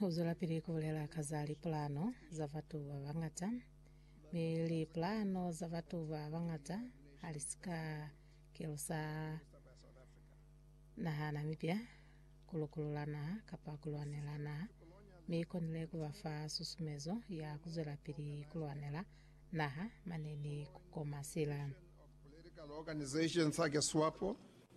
U zwelapili ku bulela ka za lipulano za batu ba bañata, mi lipulano za batu ba bañata ha li si ka kelusa naha na mipya, ku lukulula naha kapa ku lwanela naha, mi i konile ku ba fa susumezo ya ku zwelapili ku lwanela naha mane ni ku koma sila. Political Organization sake Swapo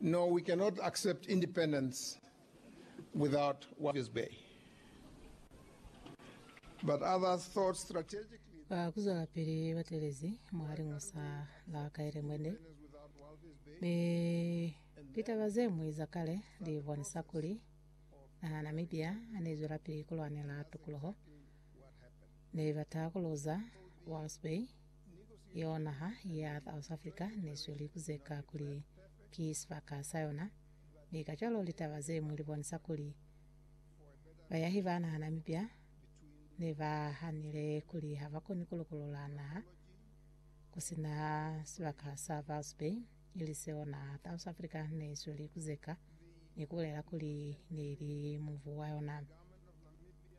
No, we cannot accept independence without Walvis Bay. But others thought strategically that Ba kuzwelapili batelezi mwa liñusa la Kaelemwende, independence without Walvis Bay mi litaba ze ñwi za kale li bonisa kuli naha ya Namibia ha ne zwelapili ku lwanela tukuluho, ne ba taha ku luza Walvis Bay. Yeo naha ya South Africa ne sweli ku zeka kuli ki sibaka sa yona, mi kacwalo litaba ze ñwi li bonisa kuli bayahi ba naha Namibia ne ba hanile kuli ha ba koni ku lukuluha naha ku si na sibaka sa False Bay, ili seo naha South Africa ne sweli ku zeka ni ku bulela kuli ne li mubu wa yona.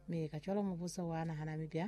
Mi kacwalo mubuso wa naha Namibia